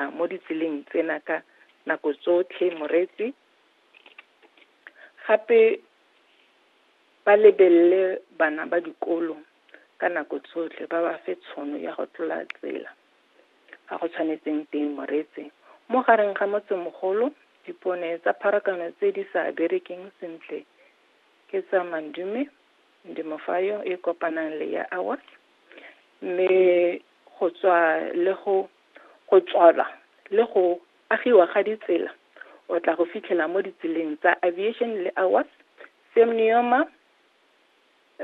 tsamaya mo ditseleng tsena ka nako tsotlhe moreetsi gape ba lebelele bana ba dikolo ka nako tsotlhe ba ba fe tshono ya go tlola tsela ga go tshwanetseng teng moreetsi mo gareng ga motsemogolo dipone tsa pharakano tse di sa berekeng sentle ke tsa mandume ndemofayo e kopanang le ya awas mme go tswa le go Go tswalwa le go agiwa ga ditsela o tla go fitlhela mo ditseleng tsa Aviation le Awas, Semnioma,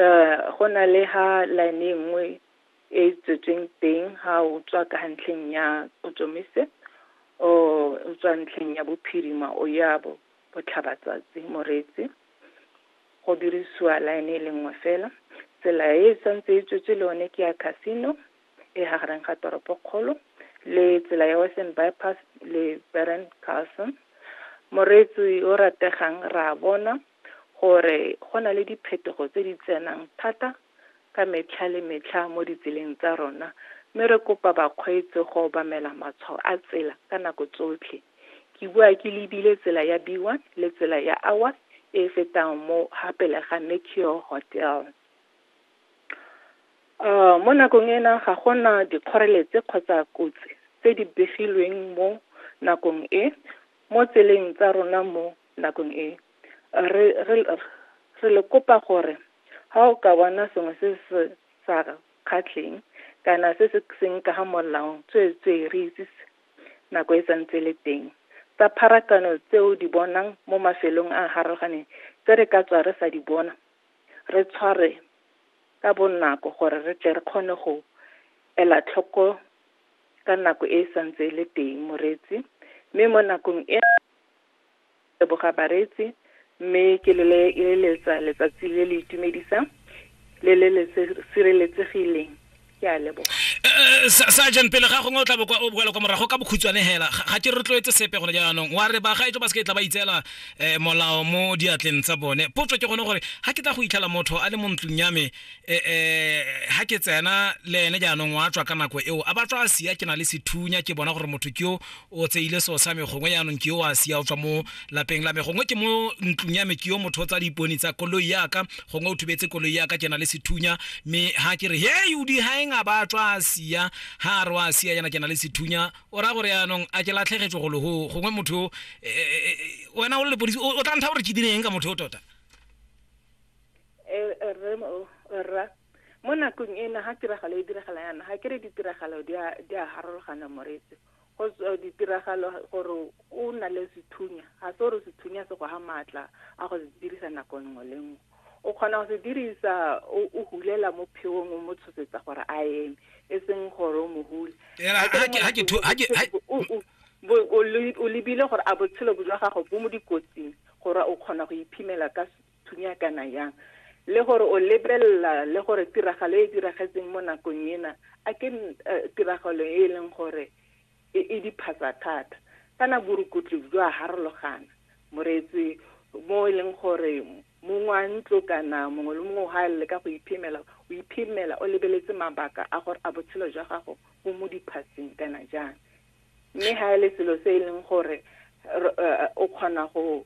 um go na le ha line e nngwe e e tswetsweng teng ha o tswa ka ga ntlheng ya Kgotsomise or o tswa ntlheng ya Bophirima o ya bo Botlhabatsatsi, Moretsi, go dirisiwa line e le nngwe fela. Tsela e e santse e tswetswe le yone ke ya Casino, e gareng ga toropokgolo le tsela ya western bypass le beren carson moreetsi o rategang ra bona gore go na le diphetogo tse di tsenang thata ka metlha le metlha mo ditseleng tsa rona mme re kopa bakgweetsi go obamela matshwao a tsela ka nako tsotlhe ke bua ke lebile tsela ya b one le tsela ya hour e fetang mo ga pele ga mercure hotel Mo nakong ena ga gona dikgoreletsi kgotsa kotsi tse di begilweng mo nakong e mo tseleng tsa rona mo nakong e re re re le kopa gore ha o ka bona sengwe se se sa kgatlheng kana se se seng ka ga molao tsweetswee re itsise nako e santse le teng tsa pharakano tse o di bonang mo mafelong a a harologaneng tse re ka tswa re sa di bona re tshwarwe ka bonako gore re tle re kgone go ela tlhoko ka nako e e santse e le teng moreetsi mme mo nakong e leboga bareetsi mme ke le letsa letsatsi le le itumedisang le le le sireletsegileng ke a leboga eh, eh, sergeant pele ga gongwe o tla bokwa o boela kwa morago ka bokhutswane hela ga ke rotloetse sepe gone jaanong wa re ba ga etso ba se ke tla ba itseela eh, molao mo diatleng tsa bone potso ke gone gore ga ke tla go itlhela motho a le mo ntlong ya me ga ke tsena le ene jaanong wa tswa ka nako eo a ba tswa a sia ke na le sethunya ke bona gore motho ke o o tseile seo sa me gongwe yaanong ke yo a sia o tswa mo lapeng la me gongwe ke mo ntlong ya me ke yo motho o tsa dipone tsa koloi yaka gongwe o thubetse koloi yaka ke na le sethunya mme ha ke re hei o digaeng a ba tswa a sia ha a re wa sia yana ke na le sethunya o raya gore yaanong a ke latlhegetswe go logo gongwe motho eh, eh, eh, wena o le lepodisi o o tla ntha gore ke direng ka motho o tota Eh, eh, rre mo- eh, rra mo nakong ena ga tiragalo e diragala yana ga ke re ditiragalao di a- di a harologana moretse go tswa ditiragalo gore o na le sethunya ga se gore sethunya se go ga maatla a go se dirisa nako nngwe le nngwe o kgona go se dirisa o hulela mo pheong o mo tshosetsa gore a eme e seng gore o mo hule o lebile gore a botshelo bo jwa gago bo mo dikotsing gore o kgona go iphimela ka thunya kana yang le gore o lebelela le gore tiragalo e diragetseng mo nakong ena a ke eh, tiragalo e e leng gore e, e diphatsa thata kana borukutlo jwa harologana moreetsi mo e leng gore mongwe wa ntlo kana mongwe le mongwe ga le ka go iphemela o iphemela o lebeletse mabaka a gore a botshelo jwa gago bo mo diphatseng kana jang mme ga e le selo se e leng gore eh, o kgona go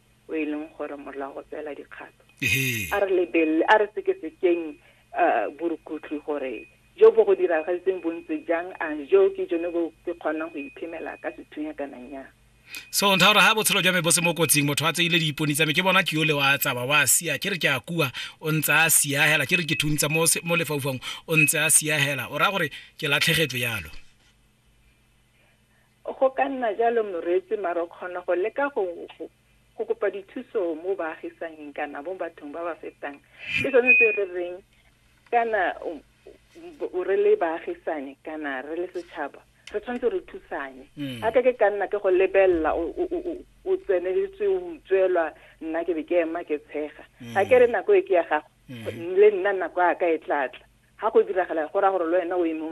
o e leng gore molao go tsela dikgato a re lebelele a re sekesekeng uh, borukutli gore jo bo go diragaditseng bontse jang a jo ke jone bo ke kgonang go iphemela ka sethunya kana nya so ntha gore ga botshelo jwa me bo se mo kotsing motho a tseile diipone tsa me ke bona ke yole wa tsaba wa sia ke re ke a kua o ntse a sia hela ke re ke thuntsa mo mo lefaufang o ntse a sia hela o ra gore ke latlhegetswe yalo Go ka nna jalo moreetsi mare o kgona go leka go go kopa dithuso mo baagisanyeng kana mo bathong ba ba fetang ke sone se re reng kana re le baagisane kana re le setšhaba re tshwanetse re thusanye mm. a ka ke ka nna ke go lebelela o tseneletswe o utswelwa nna ke be ke ema ke tshega ga mm. ke re nako e ke ya gago mm. le nna nako ya ka e tlatla ga go diragala go ra gore le wena o eme o